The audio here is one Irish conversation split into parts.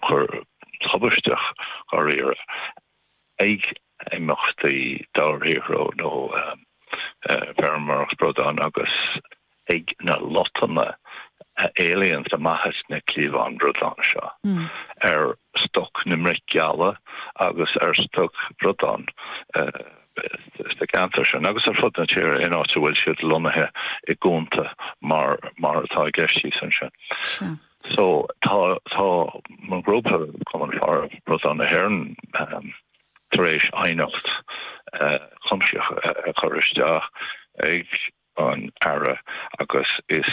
cur tubaisteach dháiríre, ag imeachtaí dobharshaothrú nó feirmeoireacht bradán agus ag na lotnaidí a éalaíonns amach as na cliabháin bradán seo ar stoc na mbreac geala agus ar stoc bradán sna ceantair sin agus ar fud na tíre in áit a bhfuil siad lonnaithe i gcuanta mar atá i gceist thíos ansin. So tá tá mo ghrúpa Cumann Faire Bradán na hÉireann tar éis aighneacht chuimsitheach a chur isteach ag an Aire agus is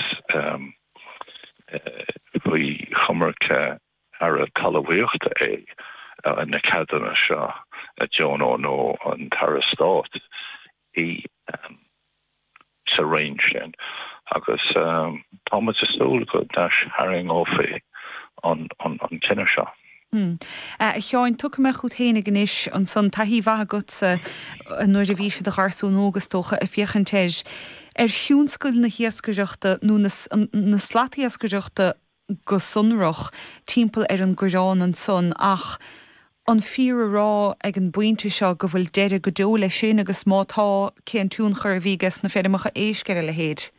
faoi choimirce an Aire Talmhaíochta é na ceadanna seo a dheonú nó an tAire Stáit. í sa roinn sin agus tá muid ag súil go n-aistarraingeofaí an cinneadh seo. A Sheáin, tiocfaidh mé chugat féinig anois ansan, taithí mhaith agatsa nuair a bhís i do gharsún óg, is dócha, ag féachaint ar thionscal na hiascaireachta nó na slatiascaireachta, go sonrach, timpeall ar an gCorrán ansan, ach an fíor a rá ag an bpointe seo go bhfuil deireadh go deo leis sin, agus má tá, cén tionchar a bhí ages na feirmeacha éisc ar a leithéid?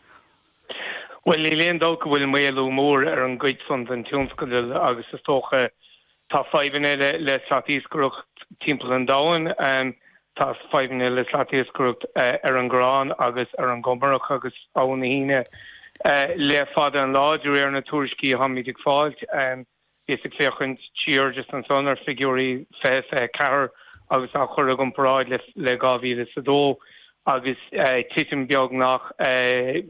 Bhuel, níl aon dabht go bhfuil maolú mór ar an gcuid san den tionscadal agus is dócha Tá fadhbanna le slatiascaireacht timpeall an domhain. Tá fadhbanna le slatiascaireacht ar an gCorrán agus ar an gCumarach agus Abhainn na hUíne le fada an lá, de réir na tuairiscí a tháimid ag fáil. Bhíos ag féachaint siar just ansan ar figiúirí 2024 agus á chur i gcomparáid le 2022 agus titim beagnach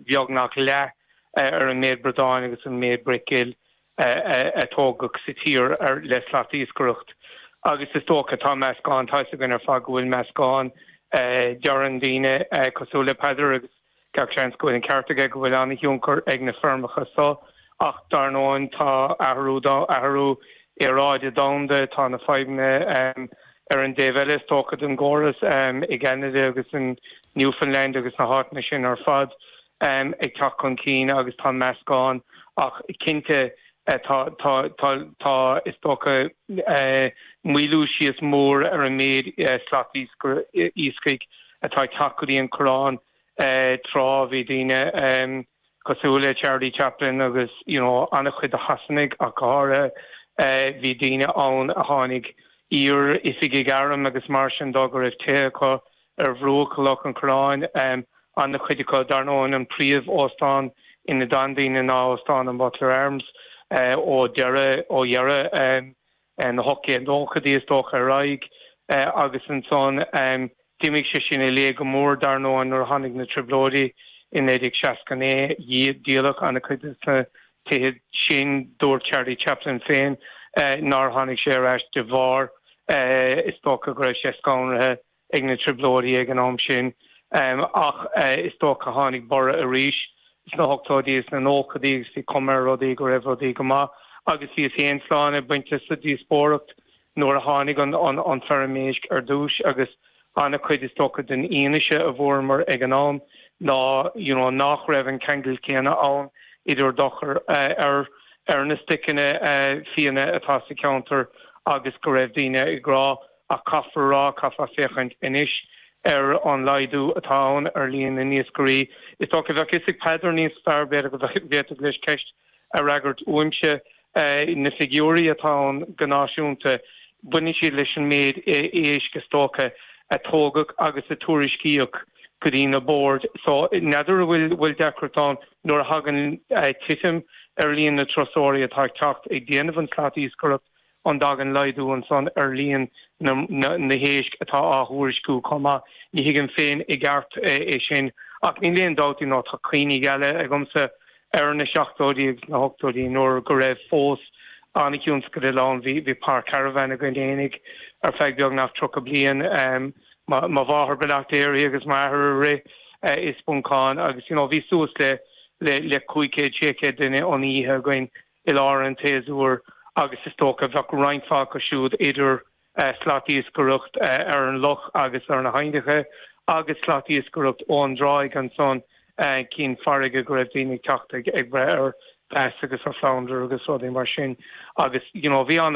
beagnach leath ar an méid bradán agus an méid bric ghil. a tógadh sa tír le slatiascaireacht agus is dócha tá meascán tá's againn ar fad go bhfuil meascán deireann daoine cosúil le Peadar agus gach seans go bhfuil an ceart aige go bhfuil an-thionchar ag na feirmeacha so ach dar ndóin tá athrú tá athrú aeráide domhanda tá na fadhbanna ar an dtaobh eile is dócha den gcósta i gCeanada agus in Newfoundland agus na háiteanna sin ar fad. ag teacht chun cinn agus tá an meascán, ach cinnte tá, is dócha, maolú síos mór ar an méid slatiascaigh atá ag teacht go dtí an Corrán. Tráth bhí daoine cosúil le Charlie Chaplin agus an-chuid de Shasanaigh ach go háirithe, bhí daoine ann a tháinig iar-oifigigh airm agus mar sin de go raibh tithe acu ar bhruach Loch an Choireáin, ana-chuid acu, dar ndóigh, an príomh-óstán ina d'fhan daoine ná Óstán an Butler Arms ó dheireadh, ó dheireadh na hocht déag nóchaidí, is dócha, ar aghaidh agus ansan d'imigh sé sin i léig go mór, dar ndóigh, nuair a tháinig na Trioblóidí i 1969. Díoladh an-chuid de na tithe sin. Dúirt Charlie Chaplin féin nár tháinig sé ar ais de bharr, is dócha, go raibh sé scanraithe. ag na Trioblóidí ag an am sin, ach is dócha tháinig borradh arís sna hochtóidí is na nóchaidí agus bhí cuma ar rudaí go raibh rudaí go maith agus níos aon sláinte bainte sa díospóireacht nuair a tháinig an feirm éisc ar dtús agus an-chuid is dócha den fhianaise a fuaireamar ag an am ná you know nach raibh an ceangal céanna ann idir dochar ar ar na stoiceanna fiáine atá sa cheantar agus go raibh daoine ag rá Ach caithfear a rá, caithfeá féachaint anois ar an laghdú atá ann ar líon na n-iascairí. Is dócha, bheadh fhios ag Peadar níos fearr, b'fhéidir go bhféadfadh leis ceist a fhreagairt uaimse. Na figiúirí atá ann go náisiúnta, baineann siad leis an méid éisc, is dócha, a tógadh agus a tuairiscíodh go dtí na boird. So, n'fheadar an bhfuil deacracht ann nuair a thagann titim ar líon na dturasóirí atá ag teacht ag déanamh an tslat iascaireacht An dtagann laghdú ansan ar líon na héisc atá á thuairisciú chomh maith? Ní thuigim féin i gceart é sin, ach níl aon dabht ná tá cuimhní geala agamsa ar na seachtóidí agus na hochtóidí nuair go raibh fós an-thionscadal ann. Bhí páirc carbhán againn fhéinig ar feadh beagnach tríocha bliain. Mo mháthair Bleachtairi agus m'athair a rith i Spuncán agus bhí suas le cúig chéad, sé chéad duine san oíche againn. i lár an tséasúir agus is dócha bheadh roinnt mhaith acu siúd idir slat iascaireacht ar an loch agus ar na haibhneacha agus slat iascaireacht ón dtráigh ansan cinn farraige go raibh daoine ag teacht ag breith ar bass agus ar flounder agus rudaí mar sin agus you know bhí an